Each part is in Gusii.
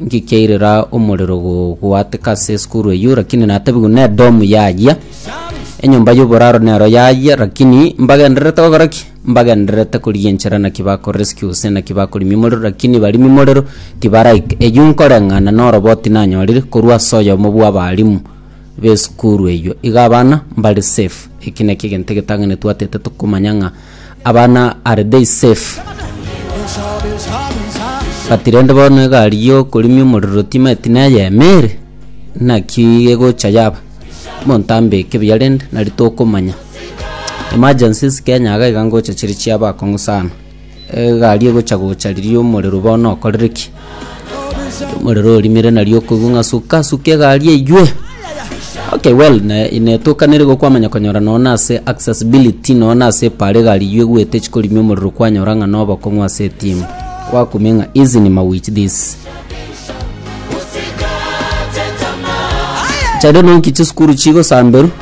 Inki kiairera omorero gogwatika ase esukuru eyio, rakini natabigwe n'edomu yayia? Enyomba y'oboraro nero yayia, rakini mbagendererete gokora ki? Mbagendererete korigia enchera naki bakorescue gose naki bakorimia omorero, rakini barimi morero tibaraika. Eyio nkoreng'ana noroboti nanyorire korwa ase oyomo bw'abarimu b'esukuru eyio. Iga abana mbare safe. Eki nakio egento egetang'ani twatete tokomanya ng'a. abana are they safe? But rende bono egari yokorimia omorero timanyeti neye ime ere naki egocha yaba monto ambeke buya rende nari tokomanya emergencies kenya iga iga ngocha chiri chiaba akong'u sana egari egocha gocha riria omorero bono okorire ki Omorero orimire na riokoigwa ng'a suka suka egari eywe. Okay well ne netokanire igo kwamanya konyora nonya na ase accessibility nonya na ase epara egari eywo egwete chikorimia omorero kwanyora ng'a na obokong'u ase etimu. Gwakumia ng'a hizi ni mawich this. Chiria nonki chisukuru chigosamberwa.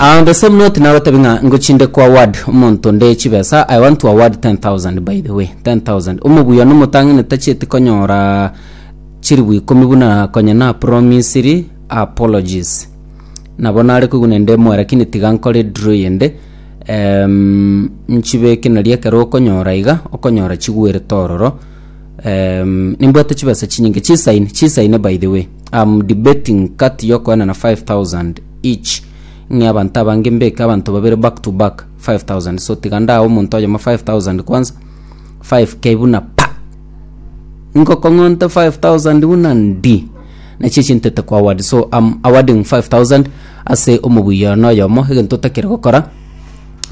Ah, on the same note nagotebi ng'a ngochinde kwa award omonto nde chibesa i want to award 10000 by the way 10000 omobuya nomotang'ani tachieti konyora chiribu ikomi buna konya na promisiri apologies nabo nare koiguna nde moe lakini tiga nkore draw yende em, nchibeke nari ekero okonyora iga okonyora chigwerete ororo Um, nimbwate chibesa chinyinge chisaine chisaine by the way am debating kati yokoena na 5000 each ng'e abanto abange mbeke abanto babere back to back 5000 so tiga ndaha omonto oyoma 5000 kwanza 5k buna pa ngokong'onte 5000 buna ndi nachio chintete kwa award so am awarding 5000 ase omobuya noyomo egento otakire gokora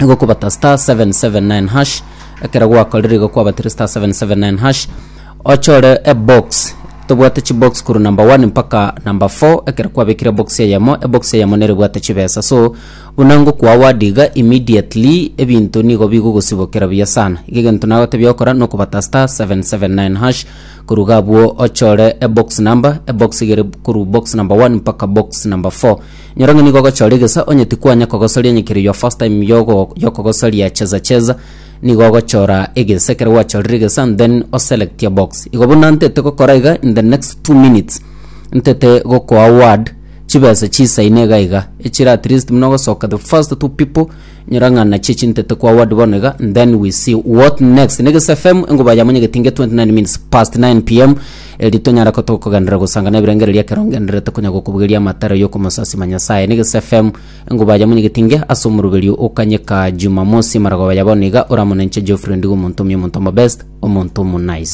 igokobata star 779 hash ekero gwakorire igo kwabatire star 779 hash ochore ebox tobwate chibox korwa number 1 mpaka number 4 ekero kwabekire box eyemo ebox eyemo nere ebwate chibesa so buna ngokwa award iga immediately ebinto nigo bigogosibokera buya sana iga egento nagotebia okora nokobata star 779 hash korwa iga abwo ochore ebox number ebox igere korwa box number 1 mpaka box number 4 Nyora ng'a nigo ogochora egesa, onye tikwanya kogosoria enyekerio your first time yogo yokogosoria cheza cheza, nigo ogochora egesa ekero gwachorire egesa and then o select a box. Igo buna ntete gokora iga in the next two minutes ntete gokoa word chibesa chisaine iga iga echire at least buna ogosoka the first two people Nyurang'ana chie chintete kwa word bono iga then we see what next. Negesa FM engoba yamo nyagete inge 29 minutes past 9 pm eri tonyara ko tokogenderera gosanga na ebirengererio ekero ngendererete konya gokobugeria amataro yokomosasima Nyasaye. Negesa FM engoba yamo nyagete inge ase omoroberio o Kanyeka Jumamosi maragoba ya bono iga oramona inche Geoffrey Ndigo omonto omuya omonto omobest omonto omo nice.